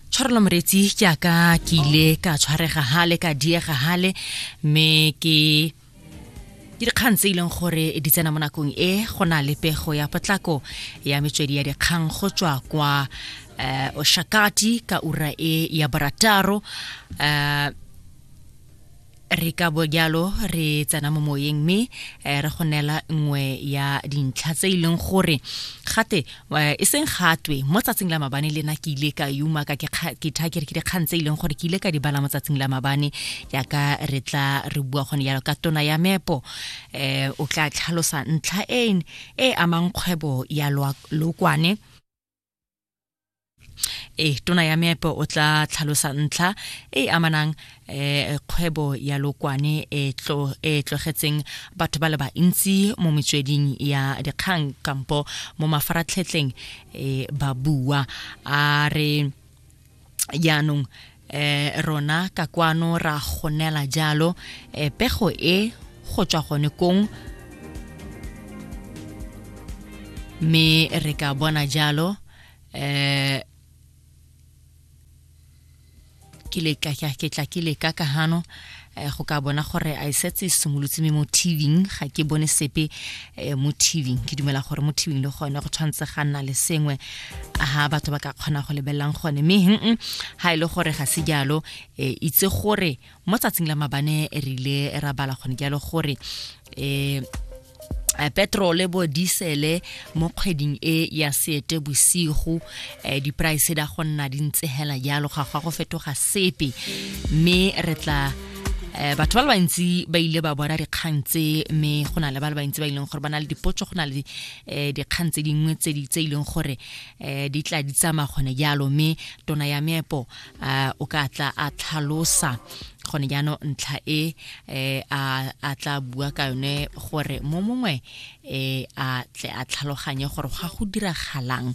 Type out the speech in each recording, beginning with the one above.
tshwarelo moretsi ke aka ke ile ka tshwarega hale ka diega hale mme ke ke dikgang tse e leng gore di tsena mo nakong e go na le pego ya potlako ya metswedi ya dikgang go tswa kwa uh, oshakati ka ura e ya barataro uh, re ka bo jalo re tsena mo moyeng mme eh, re go neela nngwe ya dintlha tse e leng gore gate eh, e seng gatwe mo tsatsing la mabane le na ke ile ka yuma ka ke tha ke re ke dikgang tse e leng gore ke ile ka di bala mo tsatsing la mabane jaaka re tla re bua gone jalo ka tona ya mepo um o tla tlhalosa ntlha e, e amang kgwebo ya lokwane e tona ya meepo o tla tlhalosa ntlha e e amanang um kgwebo ya lokwane e e tlogetseng batho ba le bantsi mo metsweding ya dikgang kampo mo mafaratlhetleng um ba bua a re jaanong eh rona ka kwano ra gonela jalo eh, pego e go tswa gone kong mme re ka bona jalo eh ke le ka ke tla ke le ka ka hano eh, go ka bona gore a e setse e simolotse me mo tvng ga ke bone sepe eh, mo tvng ke dumela gore mo tvng le gone go tshwanetse ga nna le sengwe ha batho ba ka kgona go lebelelang gone mme hm ga e le gore ga se jalo eh, itse gore mo tsatsing la mabane re ile ra bala gone jalo gore um Eh, petrole bo disele mo kgweding e ya seete bosigo eh, di-price da go nna di ntse hela jalo ga gwa go fetoga sepe mme re tla eh, batho ba le bantsi ba ile ba bona dikgang tse mme go na le ba le bantsi ba ileng gore ba na le dipotso go na le dikgang tse dingwe tse e leng gore di tla di tsamaya gone jalo mme tona ya meepo uh, o ka tla a tlhalosa gone jaanong ntlha e eh, a tla bua ka yone gore mo mongwe eh, a tle a tlhaloganye gore ga go diragalang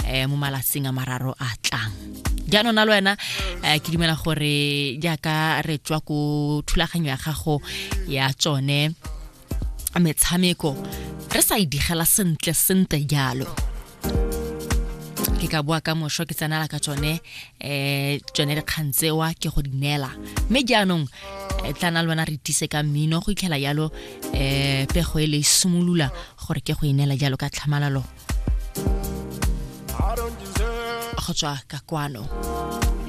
eh, mo malatsing a mararo a tlang jaanong na le wena eh, ke dumela gore jaaka re tswa ko thulaganyo ya gago ya tsone metshameko re sa e digela sentle sentle jalo ke ka boa ka mošwa ke tsenala ka tsone um tsone dikgang tsewa ke go di neela mme jaanong e tla na le bona re tise ka mmino go itlhela jalo um pego e le e simolola gore ke go e neela jalo ka tlhamalalo go tswa ka kwano